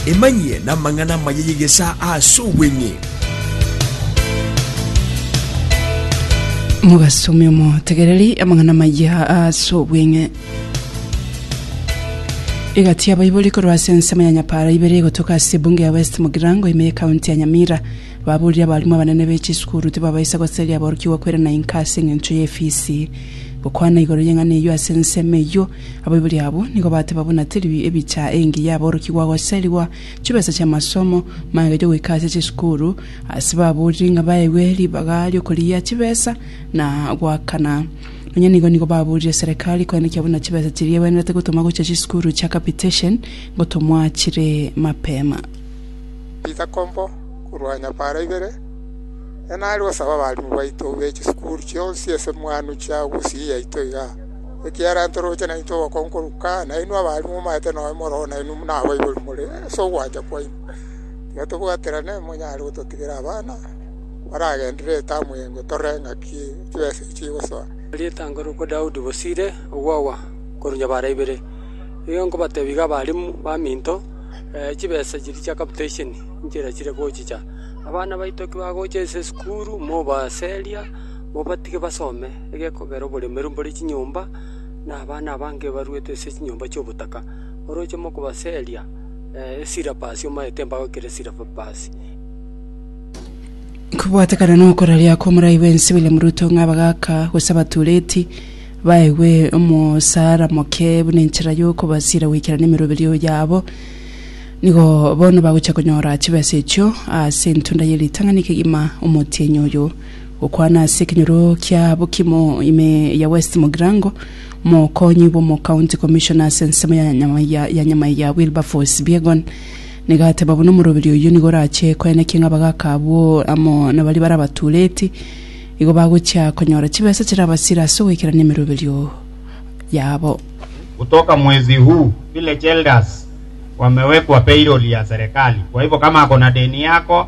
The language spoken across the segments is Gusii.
Emanyie namang'ana amaya y'egesaa ase obweng'e. Mogasomia omotegereri amang'ana amaya ase obweng'e. Egati ya baibori korwa ase ensemo ya Nyapara ibere egotoka ase ebunge ya West Mugirango ime ye county ya Nyamira. Baborire abarimu abanene be chisukuru tibabaisa goseria aborokigwa kwerana inka ase eng'encho ye efisi. Gokwana igoro y'eng'ana eyio ase ensemo eyio Abaibori abwo nigo bateba buna teri ebicha engiya aborokigwa goserigwa chibesa chi'amasomo, magega y'ogoika ase chisukuru, ase baboriri ng'a baegwe ribaga ri'okorigia chibesa na goakana. Nonya nigo nigo baborire serekari koenekia buna chibesa chiria egwenerete gotoma gochia chisukuru chia capitation gotomwa chire mapema. Bisakombo korwa nyapara ibere, Nere nare gosaba abalimu baito be chisukuru chionsi ase mwanwe chia gusii yaito igaa. Ekiagera ntoroche naintwe obokong'u korwa kare, nainwe abare momaete nonya moroo nainwe buna abaibori more, ase ogwancha kwaino. Tiga tobwaterane monyare gototigera abana baragenderere etamu eyengo tore ng'aki chibesa echi chigosoa. Rietang'ani rokwa Daudi bosire ogwagwa korwa nyabara ibere. Igo nkobatebia iga abarimu baminto, chibesa chiria chia capitation inche nachire gochicha. Abana baito ki bagocha ase esukuru, mobaseria, mobatige basome. egekogera oboremeru mbore chinyomba, na abana abange baruete ase chinyomba chi'obotaka. Oroche mokobaseria esirapasi omaete mbagoikere esirapasi. Kobwatekana nokoraria kw'omorai bwensi William Ruto ng'a abagaaka gose abatureti baegwe omosara moke buna enchera y'okobasira goikerania emeroberio yabo, nigo bono bagochia konyora chibesa echio ase entunda ye ritang'ani kegima omotienyi oyo Gokwana ase ekenyoro kia bokimo ime ya West Mugirango, Mokonyi bw'omo County Commissioner ase ensemo ya Nyamaiga ya Nyamaiga Wilberforce Biegon nigo ateba buna omoroberi oyio nigo orache koenekia ng'a abagaka abwo amo nabaria bare abatuureti igo bagochia konyora chibesa chirabasire ase ogoikerania emeroberio yabo. Kutoka mwezi huu village elders wamewekwa payroll ya serikali kwa hivyo kama ako na deni yako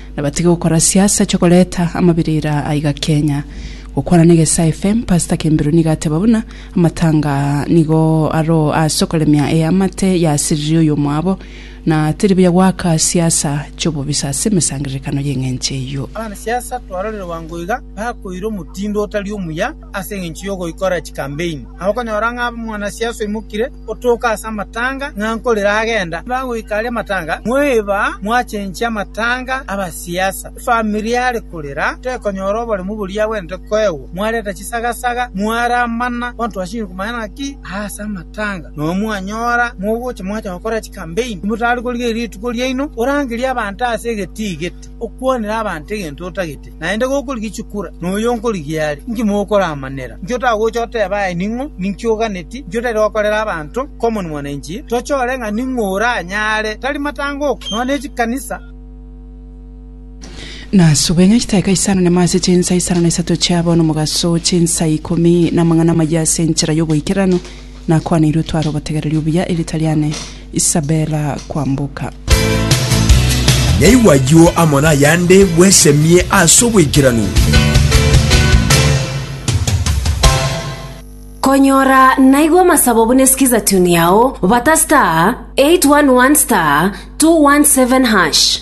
Na batige gokora siasa chikoreta amabirira aiga Kenya. Gokwana na Egesae FM, Pastor Kembiro nigo ateba buna amatanga nigo aro ase okoremia eamate yasiriri oyomwabo, na teri buya goaka siasa chi'obobisa ase emesangererekano y'eng'encho eyio. Abanasiasa twarorire bwango iga bakoira omotindo otari omuya ase engencho yogoikora chikampeini. Nabo okonyora ng'a mwanasiasa oimokire otooka ase amatanga ng'a nkorera agenda, bagoika aria amatanga, mweba mwachenchia amatanga abasiasa. Efamiri are korera tekonyora oboremu boria agwenerete koegwa, mwareta chisagasaga, mwaramana kontwasini komanya naki aase amatanga, nao mwanyora mogocha mwacha gokora chikambeini, timotari korigereria rituko riaino, orangerie abanto ase egeti egeti. Okwanera abanto egento otagete, naende gokorigia chikura, noyo nkorigia are. Inki mokoramanera? Inki otagocha oteba aye ning'o? Ninki oganeti? Inki otari gokorera abanto? Common Mwananchi, tochore ng'a ning'o oranyare, tari matangoko, nonya ne chikanisa. Nasube ng'a chitaika isano nemo ase chinsa isano na isato chiabo nomogaso, chinsa ikomi namang'ana amayia ase enchera y'oboikeranu, Nakwaneirwe tware obotegereri obuya erita riane Isabella kwamboka. Naigwe ayio amo nayande bwesemie ase oboikeranu. Konyora naigwe amasabo buna esikiza tune yao bata star 811 star 217 hash.